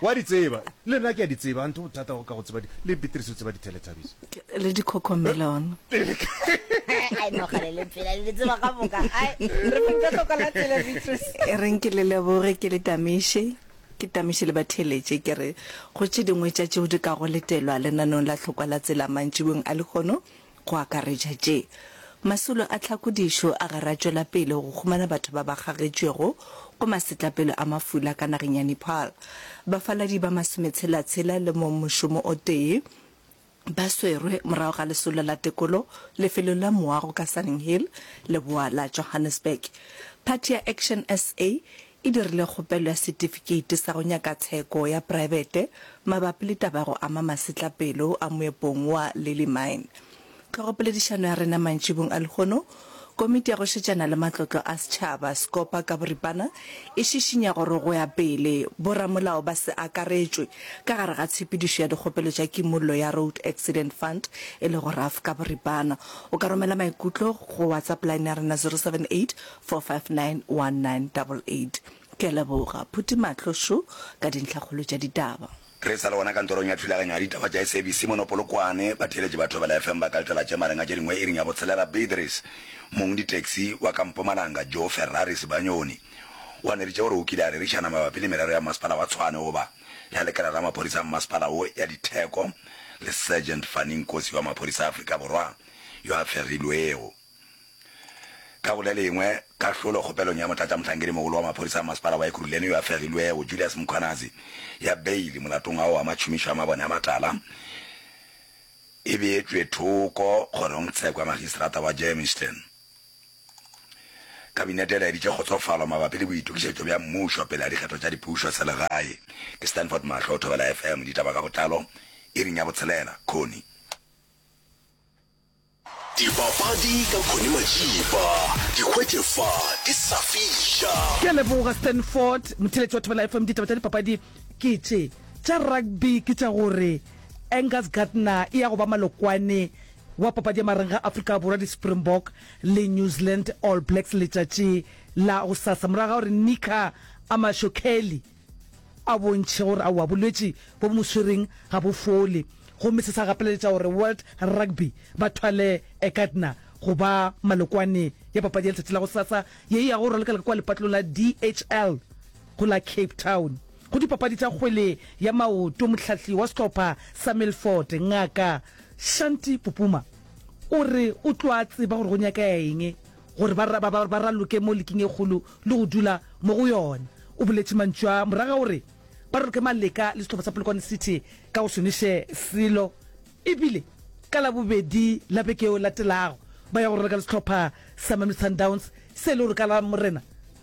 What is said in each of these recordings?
Wa di tseba, le nna ke a di tseba, a nto bothata go ka go tseba di, le Beatrice o tseba di Teletubbies. Le di Cocomelon. Ai no ga le le phela le tseba ga boka. Ai re mo ka tloka la tele Beatrice. E reng ke le leboge ke le tamiše. Ke tamiše le ba theletše ke re go tše dingwe tša tšeo di ka go letelwa lenanong la hlokwa la tsela mantšibong a lekgono. go akaretša tše, Masolo a tlhakodišo a ga ra tšwela pele go humana batho ba ba kgagetšwego go masetlapelo a mafula ka nageng ya Nepal. Bafaladi ba masometshela-tshela le mongmošomo o tee ba swerwe morago ga lesolo la tekolo lefelong la moago ka Sunninghill, leboa la Johannesburg. Phathi ya Action sa e dirile kgopelo ya setifikeiti sa go nyaka tsheko ya praebete mabapi le taba ya go ama masetlapelo a moepong wa Lily Mine. Tlhogopoledišano ya rena mantšibong a lehono, Komiti ya go Šetšana le Matlotlo a Setšhaba, Scopa, ka boripana e šišinya gore go ya pele boramolao ba se akaretšwe ka gare ga tshepedišo ya dikgopelo tša kimollo ya Road Accident Fund, e lego RAF ka boripana. O ka romela maikutlo go WhatsApp line ya rena 078 4591988. Ke a leboga, phuti mahlo šo ka dintlhakgolo tša ditaba. Re sa le gona kantorong ya thulaganyo ya ditaba tša SABC mono Polokwane, batheeletši ba Thobela FM ba ka letela tše marega tše dingwe iring ya botshelela. Beatrice, mong ditaxi wa ka Mpumalanga, Joe Ferrari Sibanyoni, o ganeditše gore o kile a rerišana mabapi le merero ya Mmasepala wa Tshwane goba ya lekala la maphodisa a mmasepala wo ya ditheko le Sergeant Fanny Nkosi wa maphodisa a Afrika Borwa yo a fegilwego. Ka go le lengwe, kahlolo kgopelong ya Motlatšamohlankedi-mogolo wa Maphodisa a Masepala wa Ekurhuleni yo a fegilwego, Julius Mkhwanazi, ya beili molatong ao wa matšhomišo a mabone a matala e beetšwe thoko kgorongtsheko ya magistrata wa Germiston. Kabinete e laeditše kgotsofalo mabapi le boitokišetšo bja mmušo pele ga dikgetho tša dipušo selegae. Ke Stanford Mahlo, Thobela FM, ditaba ka botlalo, iring ya botshelela. Connie. Dipapadi ka Connie Majiba, di hwetše fa di sa fiša. Ke a leboga Stanford Motheletši wa Thobela FM. Ditaba tša dipapadi ke tše, tša rugby ke tša gore Angus Gardner e ya go ba malokwane wa papadi ya mareng ga Afrika Borwa, di-Springbok le New Zealand All Blacks letšatši la gosasa, morago ga gore Nicker Amasho Kelly a bontšhe gore aowa bolwetši bo bo mo swereng ga bo fole gomme se sa gapeleletša gore World Rugby ba thwale Ekatna go ba malokwane ya papadi ya letšatši la gosasa ye e yago go raleka-leka kua lepatlong la DHL go la Cape Town go dipapadi tša kgwele ya maoto. Mohlahli wa sehlopha sa Milford, Ngaka Shanti Pupuma, o re o tlo a tseba gore go nyakega eng gore ba, ba, ba, ba raloke mo leking e kgolo le go dula mo go yona. O boletše mantšu a, morago ga gore ba raloke maleka le sehlopha sa Polokwane City ka go šomiše selo, e bile ka Labobedi la beke yeo e latelago ba ya go raloka le sehlopha sa Mamelodi Sundowns se e le gore ka Lamorena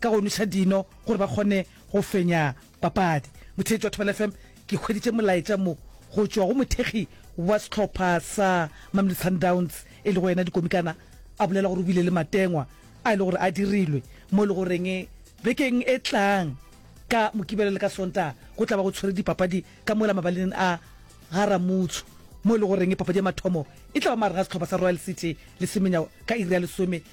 ka go nwša dino gore ba kgone go fenya papadi. Motheetši wa Thobela FM ke hweditše molaetša mo go tšwa go mothekgi wa sehlopha sa Mamelodi Sundowns e lego yena Dikomikana a bolela gore o bile le matengwa a e le gore a dirilwe mo e le goreng bekeng e tlang ka Mokibelo le ka Sontaga go tla ba go tshwere dipapadi ka mola mabaleng a Garamutsho mo e le goreng papadi ya mathomo e tla ba magareng ga sehlopha sa Royal City le Semenya ka iri ya lesome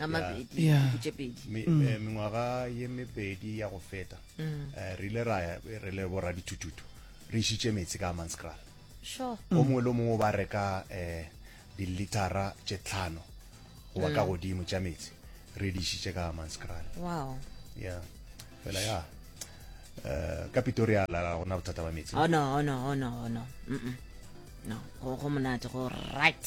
a mabedi Yeah. dinku tše pedi Me- eh, mengwaga ye mebedi ya go feta eh, re ile ra ya re le borra dithututu re išitše metsi ka manscral sure o mongwe le o mongwe o ba reka um dilitara tše tlhano goba ka godimo tša metsi re di išitše ka manscral wow ya fela ya eh, ka pitoria la la gona bothata ba metsi oh no oh no oh no oh no Mm-mm. no go go monate go right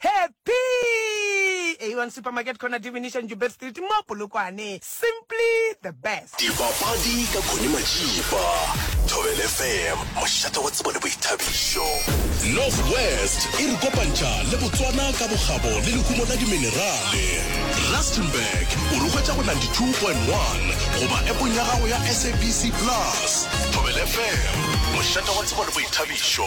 Happy! A1 Supermarket Corner Divination Joubert Street mo Polokwane. Simply the best. Dipapadi ka Connie Majiba, Thobel FM, mošate wa tsebo le boithabišo. North West e re kopantšha le Botswana ka bokgabo le lehumo la diminerale. Rustenburg o re hwetša go 92.1 goba epong ya gago ya SABC Plus. Thobel FM, mošate wa tsebo le boithabišo.